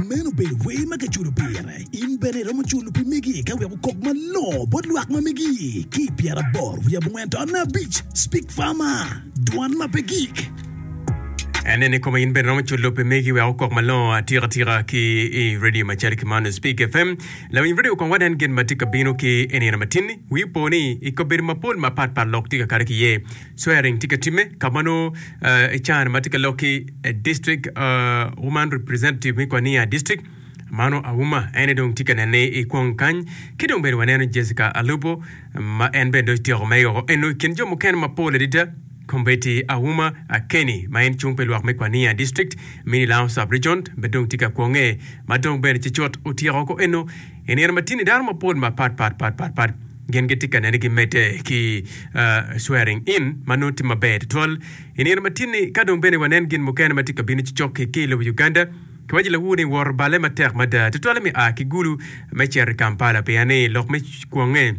Meno obedo wer ma kiculo pire. In bene iromo culo pi megi ka wek okok malongo bot lwak ma megi. Ki i pyeraboro wiye abongwen to anne abic, Speak Farmer, Dwan ma pe gik. Anene koma in bene iromo culo pi megi wek okok malongo atika tika ki i radio macalo ki man Speak FM. Lawiny radio kong wanen gin ma tye ka bino ki i nino matin-ni. Wi po ni i kabedo mapol mapat pat lok tye ka kare ki iye. Swearing tye ka timme ka ma nongo i can ma tye ka lok ki District Woman Representative me Kwania District, Mano Auma en aye dong tye ka nene i kwong kany. Ki dong bene waneno Jessica Alupo ma en bene dong otyeko me yoko eno i kin jo mukene mapol adada kombeddi Auma Akeni ma en cung pi lwak me Kwania District, Minilang Sub-Region bene dong tye ka kwonge ma dong bene ci cut otyeko woko eno i nino matini dano mapol mapat pat pat pat pat. Gin gitye ka neni gimedde ki swearing in ma nongo tye maber tutwal i nino matinni. Ka dong bene wanen gin mukene ma tye ka bino ci cok-ki ki i lobo Uganda, kiwajilawu ni woto balle matek mada tutwali me a ki Gulu me cito i Kampala pien ni lok me kwonge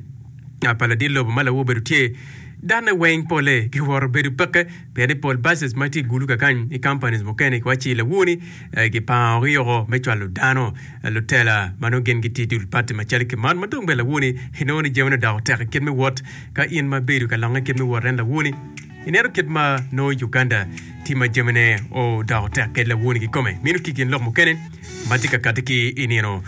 pa ladit lobo ma lawu obedo tye, dane weng polle giwoto bedo peke pien ni pol buses ma tye i Gulu kakany ki companies mukene kiwajilawu ni Kipango ki yoko me cwalo dano, lutela ma nongo gin gitye dul pati macalo ki man ma dong bene lawoni inongo ni jamine odoko tek i kit me wot. Ka in ma ibedo ka longe kit me wot en lawoni, ineno kit ma nongo Uganda tye ma jamine odoko tek kede lawoni kikome. Meno ki gin lok mukene ma tye ka kati ki i nino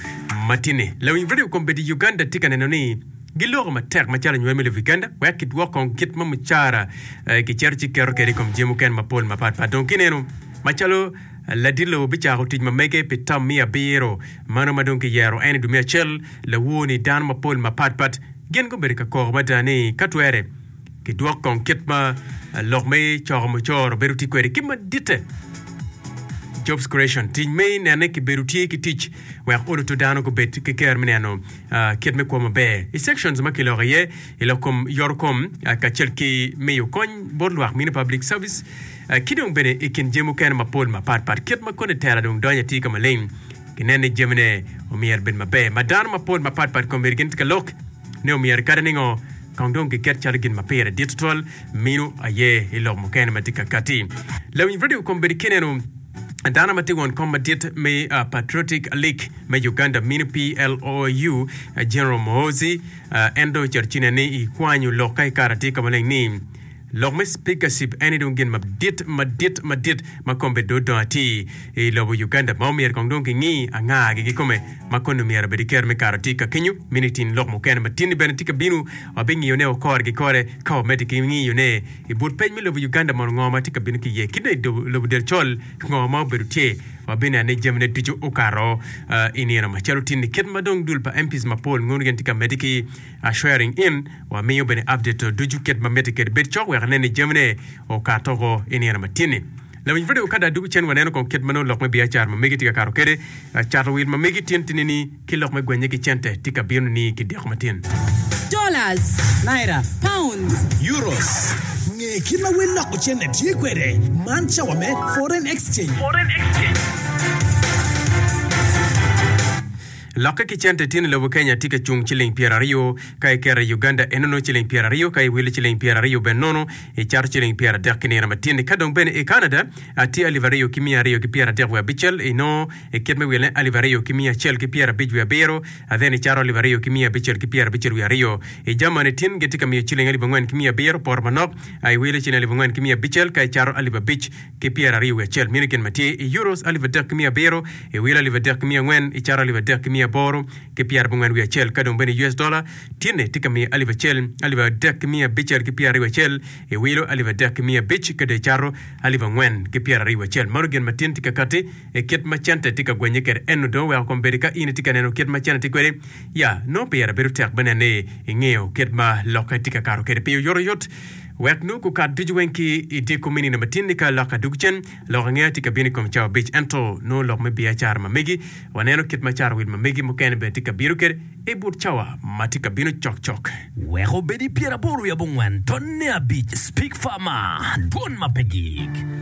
matinni. Lawiny redio kombeddi i Uganda tye ka neno ni giloko matek macalo nywal me lobo Uganda wek kidwok kong kit ma mucara kicito ci keto kede i kom jami mukene mapol mapat pat. Dong kineno macalo Ladilo bicako tic mamege pi tam miya abiro, mano ma dong kiyero en i dwe me acel. Lawo ni dano mapol mapat pat gin gubedo ka koko mada ni ka twere kidwok kong kit ma lok me coko mucoro bedo tye kwede ki maditte. Jobs Creation, Tic me nene kibedo tye ki tic wek oluto dano gubed ki ker me neno uh, kit me kwo maber i sections ma kiloko iye i lok kom yoro kom uh, kacel ki miyo kony bot lwak mine public service ki dong bene i kin jami mukene mapol mapat pat, kit ma koni tela dong donyo atir ka maleng, ginen ni jamine omyero bed maber ma dano mapol mapat pat kombeddi gin tye ka lok ni omyero kadi ningo kong dong giket calo gin ma pire dit tutwal mino aye i lok mukene ma tye ka kati. Lawiny radio kombeddi ki neno dano ma tye won kom madit me Patriotic League me Uganda mino PLOU, General Muhoozi, en dong ocito ci nen ni kwanyo lok ka kare atir ka maleng ni, Lok me speakership eni dong gin madit madit madit ma kombe dong odong atir i lobo Uganda ma omyero kong dong kingi anga gi kikome ma koni omyero obedi ker me kare tika kenyo. Mini tin lok mukene matini bene tye ka binu wabingiyo ne o kore ki kore ka wamedde ki ngiyo ne i but peny me lobo Uganda mono ngo ma tye ka binu ki iye kit ne i lobo del col ki ngo ma obedo tye wabinea ne jami ne ducu okato i nino macalo tini kit ma dong dul pa MPs mapol ngono gin tye ka medde ki are sharing in wamiyo bene update to ducu kit ma mitte kede bed cok wek inen ni jamine okato oko i nino matini. Lawiny Freddie Okada duku cen waneno kong kit ma nongo lok me biacara ma megi tye ka kato kede, cato wil ma megi tin tini ni ki lok me gwenye ki cente tye ka bino ni ki diko matin. Dollars, Naira, Pounds, Euros. Nge kit ma wel loko cente tye kwede, man cawa me Foreign Exchange. Lokke ki cente tye ni lobo Kenya tye ka cung ciling pyeraryo ka iketo i Uganda enono ciling pyeraryo ka iwilo ciling pyeraryo bene nono icato ciling pyeradek ki nino matini ka dong bene i Canada tye alip aryo ki miya aryo ki pyeradek wiye abicel inongo ikit me wilone alip aryo ki miya acel ki pyerabic wiye abiro then icato alip aryo ki miya abicel ki pyerabicel wiye aryo i Germany tin gitye ka miyo ciling alip angwen ki miya abiro poto manok iwilo ciling alip angwen ki miya abicel ka icato alip abic ki pyera aryo wiye acel mini gin ma tye i euros alip adek ki miya abiro, i wilo alip adek ki miya angwen, i caro alip adek ki miya aboro ki pyera abongwen wiye acel, ka dong bene i US dola tinne tye ka miyo alip acel, alip adek ki miya abicel ki pyera aryo wiye acel, i wilo alip adek ki miya abic ka dong i caro alip angwen ki pyera aryo wiye acel. Mano gin ma tin tye ka kati i kit ma cente tye ka gwenye kwede. Ennu dong weko kom bedi ka in itye ka neno kit ma cente tye kwede, ya, nongo pire bedo tek me neno ni ingeyo kit ma lokke tye ka kato kwede piny oyotoyot. Wek nongo gukat ducu weng ki i dyekko me nino matin-ni ka lok adug cen, lok ange aye tye ka bino i kom cawa abic. Ento, nongo lok me biacara ma megi, waneno kit ma carawil ma megi mukene bene tye ka bino kwede i but cawa ma tye ka bino cokcok. Wek obed i pyeraboro-wi abongwen, tonne abic, Speak Far Mar, Dwon ma pe gik.